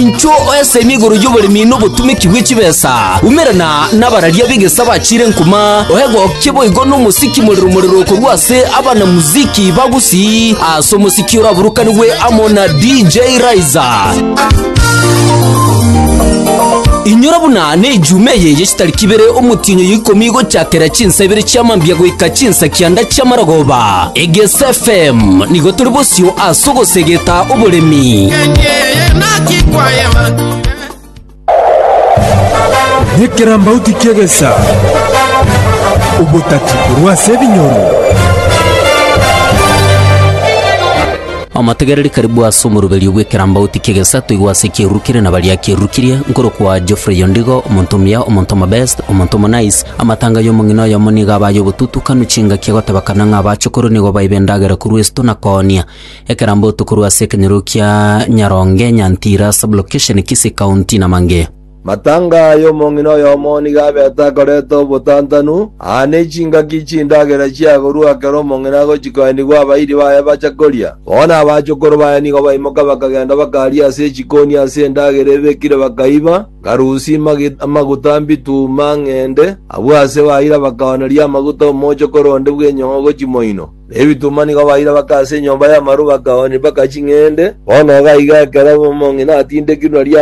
Inchuo oesemi igoro y'oboremi na obotumeki bwe chibesa, umerana nabararia b'egesa bachiire nkuma, oegokie boigo nomosiki morero morero korwa ase abanamuziki ba Gusii ase omosiki oraburukanigwe amo na DJ Raiza. Inyora buna ne ejuma eye ye chitariki ibere omotienyi oyo ikomi gochakera chinsa ibere chia mambia goika chinsa kianda chia marogoba. Egesa FM nigo tore bosio ase ogosegeta oboremi. Nekerambauti ki'egesa, obotati korwa ase ebinyoro. Omotegereri karibu ase omoruberio bw'ekerambauti ki'egesa toigwe ase ekieruru kere na baria akerukirie, nkorokwa Geoffrey Ondigo, omonto omuya, omonto omobest, omonto omonice. Amatanga y'omong'ina oyomo nigo aba ay'obotutukanu, chingaki agoteba kana ng'a abaachokoro nigo baiba endagera korwa esito na koonia. Ekerambe otokorwa ase ekenyoro kia Nyaronge, Nyantira, Sub-location Kisii County, na mangea. Matanga aya omong'ina oyomo nigo abete akoreta obotantanu, aa ne chingaki chindagera chiagorwa ekero omong'ina agochia koenigwa abairi baye bacha koria. Bono abachokoro baye nigo baimoka bakagenda bakaria ase echikoni ase endagera ebekire bakaiba, ngarusi, magit, amaguta, mbitu, mang'ende, abwo ase baira bakaoneria amaguta omochokoro onde bw'enyong'o gochia moino. Na ebitunwa nigo baira baka ase enyomba y'amaru bakaoni mpaka ching'ende. Bono iga aiga ekero omong'ina atindekirwe nari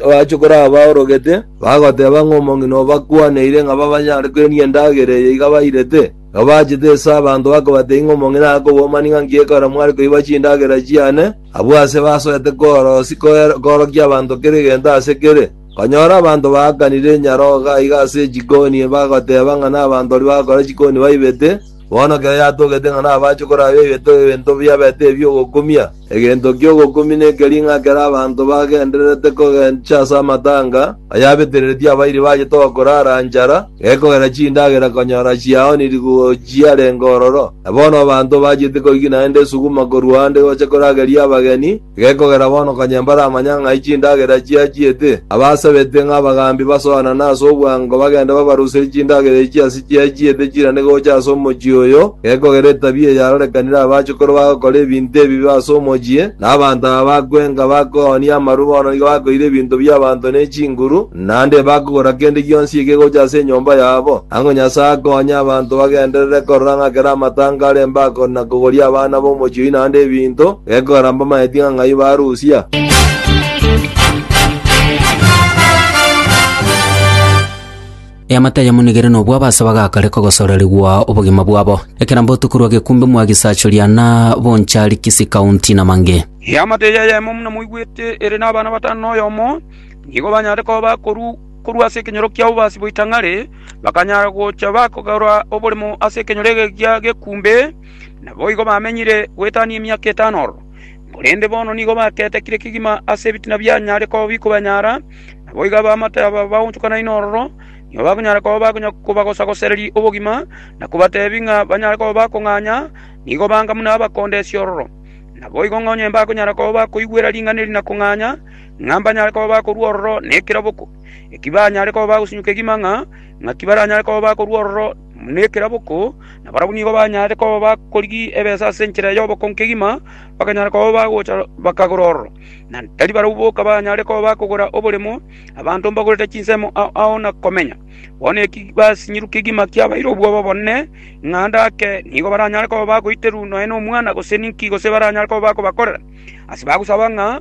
abachokoro aba baorogete, bagoteba ng'a omong'ina oo bakwaneire ng'a babanyare kwenia endagera eye iga bairete. Igo bachete ase abanto bakabatebia ng'a omong'ina akobua mani ng'a nki ekero mware koiba chindagera chiane, abwo ase basoete kworosi korokia abanto kera egento ase kere. Nkonyora abanto baakanire enyarogo iga ase chikoni, bagoteba ng'a nabanto baria bagakora chikoni baibete. Bono ekero yatogete ng'a nabache korabia egento gebento biabete ebi ogokumia, egento ki'ogokumia nekeri ng'a ekero abanto bagendererete kogencha ase amatanga, ayabetereretie abairi baye tokorara nchara, gekogera chindagera konyora chiaonirigwe gochia arenge ororo. Na bono abanto bachete koigina ende esuguma korwa ande gocha korageria abageni, Gekogera bono konya mbaramanya ng'a ai chindagera chiachiete, abasabete ng'a abagaambi basoanane ase obwango bagende babaruserie chindagera echi ase chiachiete chirane gocha ase omochie oyo, gekogera etabia eye yarorekanire abachukuru bagokora ebinto ebibe ase omochie, na abanto aba bakwenga bakoonia amaru bono nigo bakoira ebinto bi'abanto ne chinguru, Naende tibakogora kende gionsi ekegocha ase enyomba yabo, ang'o Nyasae akonye abanto bagenderere korora ng'a kera amatanga are embako na kogoria abana b'omochie oyio naende ebinto, gekogera mbamaeti ng'a ng'ai barusia. Eamate ayamonigere nobwo abasabe agakare kogosorerigwa obogima bwabo. Ekerambe otokorwa gekumbe mwa Gisachoria na Bonchari Kisii County na mang'e. Eamate eye eyemo muna moigwete ere nabana batano na oyomo. nigo banyare koba bakoru korwa ase ekenyoro kia obobaasi bwa ritang'ani, bakanyara gocha bakogora oborimo ase ekenyoro ekegiya gekumbe, naboigo bamenyire goetania emiaka etano ororo. Korende bono nigo baketekire kegima ase ebitina bianyare koba bikobanyara, naboigo abaamate aba baonchokanaine ororo nigo bakonyara koba bakonya kobagosagosereria obogima, na kobateebia ng'a banyare koba bakong'anya, nigo banga buna abakondesia ororo. Naboigo ng'a onye mbakonyara koba bakoigwera ring'ana eri na kong'anya, ng'a mbanyare koba bakorua ororo nekeraboko, eki banyare koba bagosinyuka egima ng'a ng'aki baranyare koba bakorua ororo nekeraboko, na barabwo nigo banyare koba bakorigia ebesa ase enchera y'oboko nkegima, bakanyara koba bagocha bakagora ororo, na tari barabwo boka banyare koba bakogora oboremo, abanto mbagorete chinsemo ao ao na komenya. Bono eki basinyirwe kegima kiabaire obwoba bonene, ng'a ndake nigo baranyare koba bagoiterwa nonya nomwana gose ninki gose baranyare koba bakobakorera, ase bagosaba ng'a.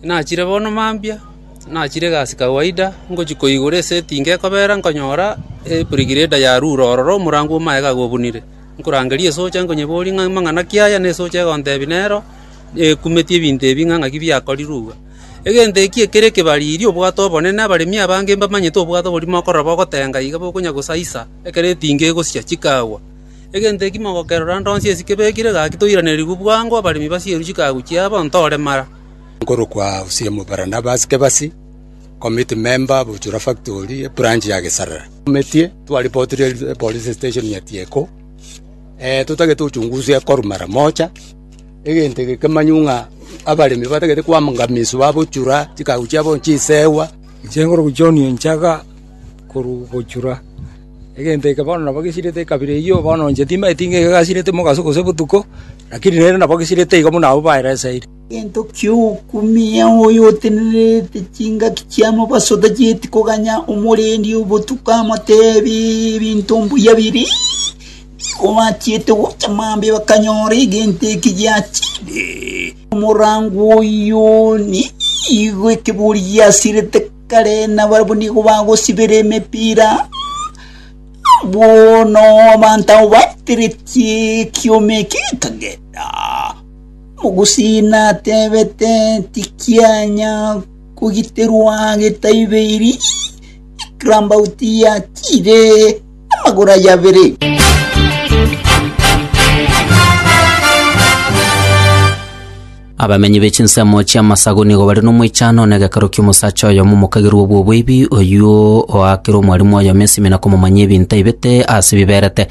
Nachire bono mambia, nachire egasi kawaida, ngochia koigora esetingi ekobera, nkonyora ebirigireda ya rure ororo omorango bw'amaega gobunire. Nkorangeria esocha nkonyeboria ng'a amang'ana ki aya? Na esocha egontebia nero, ekumeti ebinto ebi ng'a ng'aki biakorirwe igwe. Egento eki ekere ekebariri obwate obonene, abaremi abange mbamanyete obwate oboria mokorora bogotenga iga bokonya gosaisa ekero etingi egosia chikagwa. Egento eki mogokerora nde onsi ase kebekire gaki toiranerigwe bwango, abaremi basierwe chikagu chiabo, ntoremara. nkorokwa Usimu Barnabas Kebasi, committee member of Buchura Factory, ebranch ya Gesarara. Ometie twaripotirie epolice station ya Tieko, eh, totagete uchunguzi ekorwa mara moja, egento eke kemanywe ng'a abaremi batagete koangamiswa babuchura, chikagu chiabo nchisewa, Inche nkorokwa John Enchaga, korwa Buchura. Egento eke bono nabo gesirete ekabira eyio, bono inche timanyeti ng'a iga gasirete mogaso gose botuko. Lakini nere nabogisirie-te igo buna abwo baereseire. Egento ki'okumia oyo otenererete chingaki chi'amabaso otachieti koganya omorendi o botuko amoteebe ebinto mbuya biria, nigo bachiete gocha mambia bakanyora egento eke giachire. Omorango oyio nigo ekebori giasirete kare, na barabwo nigo bagosibera emepira. Bono abanto abwo bateretie ekiombe ekio ekagenda. Omogusii natebete, Tikianya kogiterwa getaibeiri, ekirambauti yatiire amagoro aye abere. Abamenyi be chinsemo chi'amasagu nigo bare nomoichano one gekero ki'omosacha oyomo omokagerwa obwo obweibi, oyio oakire omwarimu oyomo esimi na komomanyia ebinto aibete ase biberete.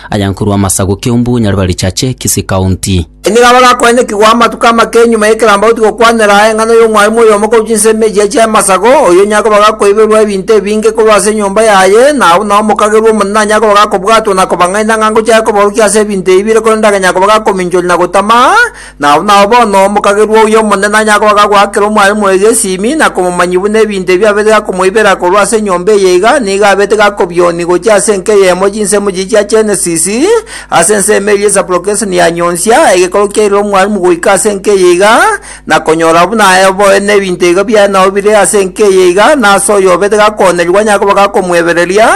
Aya nkorwa amasagu Kiumbu, Nyaribari Chache, Kisii County. Enyegamo egakwanekigwa amatuko amake nyuma y'ekerambaoti gokwanera aye eng'ana y'omwarimu oyomo korwa chinsemo echiya chi'amasagu, oyio onye akoba gakoiberwa ebinto ebinge korwa ase enyomba yaye, na abwo nao omokagerwa omonene onye akoba gakobwatwa na kobang'aina ng'a ngochake koborokia ase ebinto ebi bire korende agenye akoba gakominchoria na gotama, Nao nao bono omokagerwa oyo omonene anyagoaka goakera omwaremo oyo esimi, na komomanyia buna ebinto ebi abeete gakomoibera korwa ase enyomba eye iga, nigo abeete gakobioni gochia ase enka eyemo chinsemo chiye chia Genesis, ase ensemo eria esapulokeseni ya nyonsia, egekoro kiairire omwaremo goika ase enka eye iga, na konyora buna aye oboe nebinto iga biaye nao bire ase enka eye iga, na ase oyo obeete gakoonerigwa anyakoba gakomoebereria,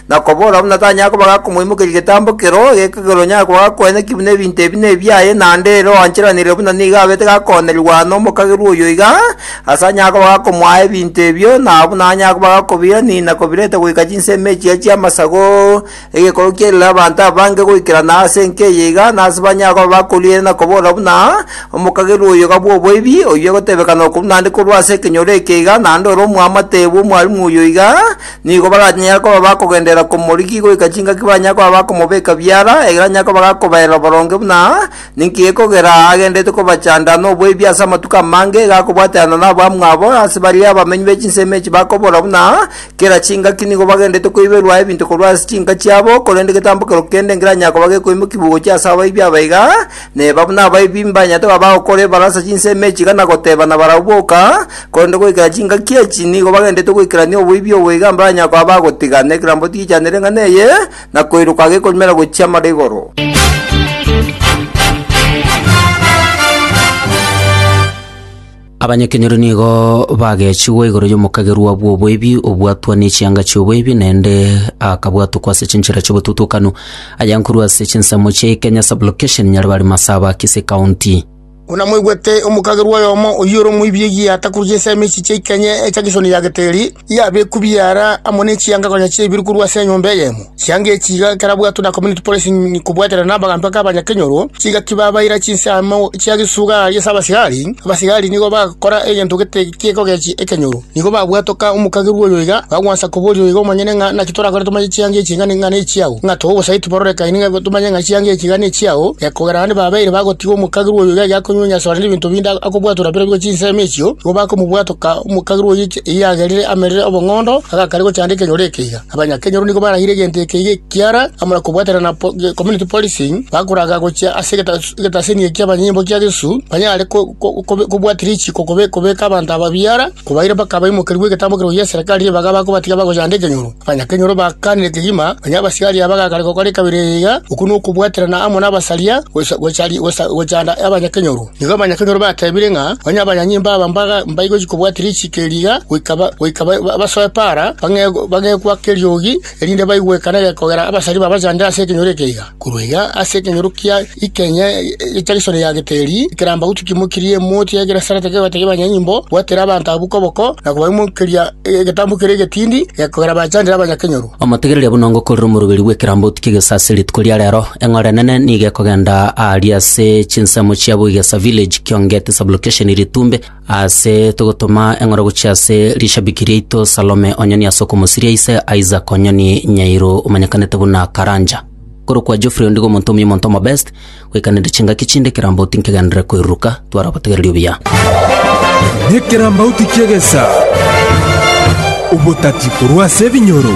na kobora buna tanyara koba gakomoimokeria getambo keroo, gekogera onyare koba gakoeneki buna ebinto ebi nebiaye, naende ere oancheranire buna nigo abete gakoonerigwa nomokagerwa oyo iga, ase anyare koba gakomoa ebinto ebio, na buna anyare koba gakobiirania na kobireta goika chinsemo echiya chi'amasago, egekorwa kiarire abanto abange goikerana ase enka eye iga, nase banyare koba bakorigereria na kobora buna, Omokagerwa oyo iga bw'oboibi, oyio egotebekana okobua naende korwa ase ekenyoro eke iga, naende ore omwamate bw'omwarimu oyo iga, Nigo baranyare koba bakogenderera komorigi goika chingaki baranyare koba bakomobeka biara, ekero anyare koba gakobaerera oboronge buna ninki gekogera agenderete kobachanda noboibi ase amatuko amange, iga akobwaterana nabamwabo, ase baria abamenyi be chinsemo echi bakobora buna kera chingaki nigo bagenderete koiberwa ebinto korwa ase chinka chiabo, korende getambo kerokende ngeranyare koba gekoimokiwa gochia ase abaibi aba iga, Neba buna abaibi mbanyarete goba bagokora ebarasa chinsemi echi iga na gotebana barabwo boka, korende goikera chingaki echi nigo bagendererete goikerania oboibi obo iga mbaranyare koba bagotiga, na ekerambe otigichanere eng'ana eye, na koiroka gekonywera gochia amara igoro. Abanyakenyoro nigo bagechigwa igoro y'omokagerwa bw'oboibi, obwatwa nechianga chi'oboibi, naende akabwatokwa ase chinchera chi'obotutukanu, aya nkorwa ase chinsemo chia Ikenya Sub-location, Nyaribari Masaba, Kisii County. Buna mwaigwete, omokagerwa oyomo oyio ore omoibi egiya atakurugia ensemo echi chia Ikenya echa Kisoni ya Geteri, Yabekwa biara amo ne chianga konya chiaibire korwa ase enyomba eyemo. Chianga echi iga ekerabwatwe na Community Policy kobwatana n'abagambi ake abanyakenyoro, chigaki babaira chinse amo chia gesuga ase abasigari, abasigari nigo bagokora egento gete gekogechia ekenyoro. Nigo babwatoka omokagerwa oyo iga, bagwansa koboria oyo iga omonyene ng'a naki torakore tomanye chianga echi iga nigo nechiao, ng'a tobe obosaiti bororekaine ng'a tomanye ng'a chianga echi iga nechiao, ekogera naende babeire bagotiga omokagerwa oyo iga egeakonywenya asore nebinto binde akobwatora bira bigo chinse ime echio, nigo bakomobwatoka omokagerwa oyo. Eyagerire amerire obong'ondo, agakaria gochanda ekenyoro ekeiga. Abanyakenyoro nigo barahire egento ekeiga ekiara amo na kobwatana na community policing, bakoraga gochia ase egetasini eki abanyimbo kia Yesu banyare kobwatia richiko kobeka abanto aba biara, kobaira mpaka abaimokerigwe egetambo kerogo gi'eserekari ri'ebaga bakobatiga bagochanda ekenyoro. Abanyakenyoro bakaanire kegima onye abasigari aba bagakare gokora ekabere eyeiga, okwo nokobwaterana amo nabasaria gochanda abanyakenyoro. Nigo abanyakenyoro bateebire ng'a onye abanyanyimbo aba mbagochia kobwati richiko eri iga goika basoe para, bagekwa keriogi, erinde baigwe ekana eye kogera abasari babachandere ase ekenyoro eke iga. Korwa iga ase ekenyoro kia ikeenya egecha gesorio ya Geteri, ekeramba gotwa kimokirie emoti ya Genesarete kegotegia abanyanyimbo bwatera abanto abwo koboko, na kobaimokeria egetambo kere egetindi, kogera bachandere abanyakenyoro. Omotegereria buna ngokorera omoroberi bw'ekerambotu ki'egesasi rituko ria rero, eng'ora enene nigo ekogenda aaria ase chinsemo chia Buigesa Village, Kiongeti Sub-location Ritumbe, aase togotoma eng'ora gochia ase rishabiki riaito Salome Onyoni ase okomosiria ise Isaac Onyoni Nyairo omanyekanete buna Karanja. Korokwa Geoffrey ondigo omonto omuya omonto omo best, Goikanera chingaki chinde ekerambauti nkegenderere koiruruka, twara obotegereri obuya. Nekerambauti ki'egesa, obotati korwa ase ebinyoro.